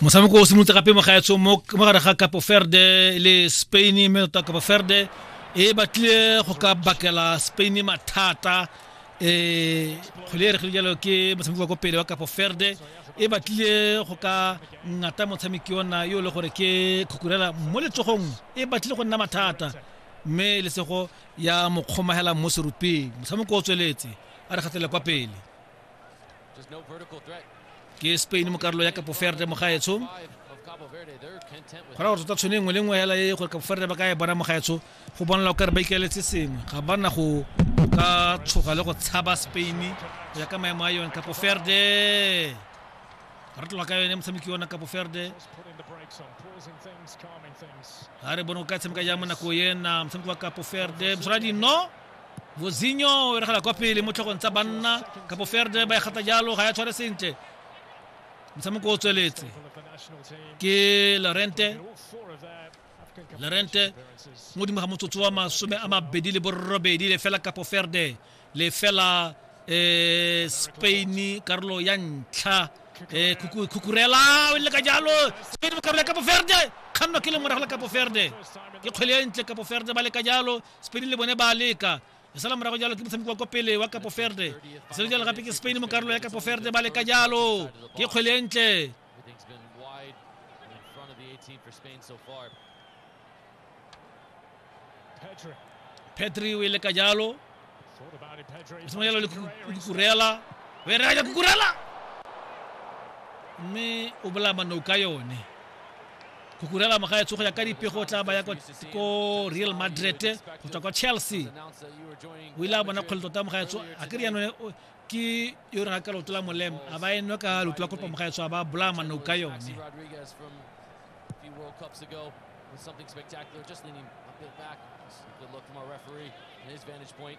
motshameko o simolotse gape mogaetsho mo gare ga capo ferde le spain mme tota capo ferde e batlile go ka bakela spain mathata um kgwele e regile jalo ke motshameko wa ko pele wa capo ferde e batlile go ka ngata motshameki ona yo e le gore ke khukurela mo letsogong e batlile go nna mathata mme lesego ya mo kgomagela mo serupeng motshameko o tsweletse a re kgatlele kwa pele ke spain mo karolo ya kapo ferde mo gaetsho gona gore tota tshone nngwe le nngwe hela e gore kapo ferde ba ka e bona mo gaetsho go bonela o kare ba ikeletse sengwe ga ba na go ka tshoga le go tshaba spain go ya ka maemo a yone kapo ferde re tloga ka yone motshameki yona kapo ferde ga re bone go ka tshameka jang mo nako ena motshameki wa kapo ferde mosoladi no vozinyo o eregela kwa pele mo tlhogong tsa banna kapo ferde ba e gata jalo ga ya tshware sentle motshameko o tsweletse ke lorente lorente mo godimo ga motsotso wa masome a mabedi le borobedi le fela kapo ferde le fela eh, spain karolo ya ntlha eh, kuku, kukurela o ile ka jalo spain mo karolo ya kapo ferde kganno ke lengwe ragola kapo ferde ke kgwele e ntle kapo ferde ba le ka jalo spain le bone ba a leka e sala morago jalo ke motshameko wa kwa pele wa capo verde e sele jalo gape ke spain mo karolo ya capo verde ba leka jalo ke kgwele e ntle petri o e leka jalo e sengwe jalo le kukurela o e reka kukurela mme o bolaya manouka yone Cucurella mogaetsho go ya ka dipego o tla baya ko real madrid go tswa kwa chelsea o ile a bona kgole tota mogaetsho a ke riano ke yo reng a ka lotola molemo a ba enwe ka loto la kopa mogaetsho a ba bolaya manao ka yone something spectacular, just leaning a bit back. Good look from our referee and his vantage point.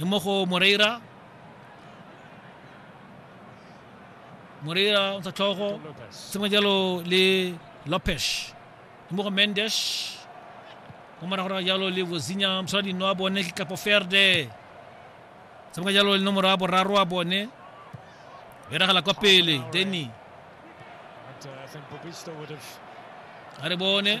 e mo go moreira moreira o ntsha tlhogo sengwe jalo le lopes e mo go mendes go morago ra jalo le bozinya mosadi no a bone ke kapo ferde sengwe jalo le nomoro ya boraro a bone beragala kwa pele denny a re bone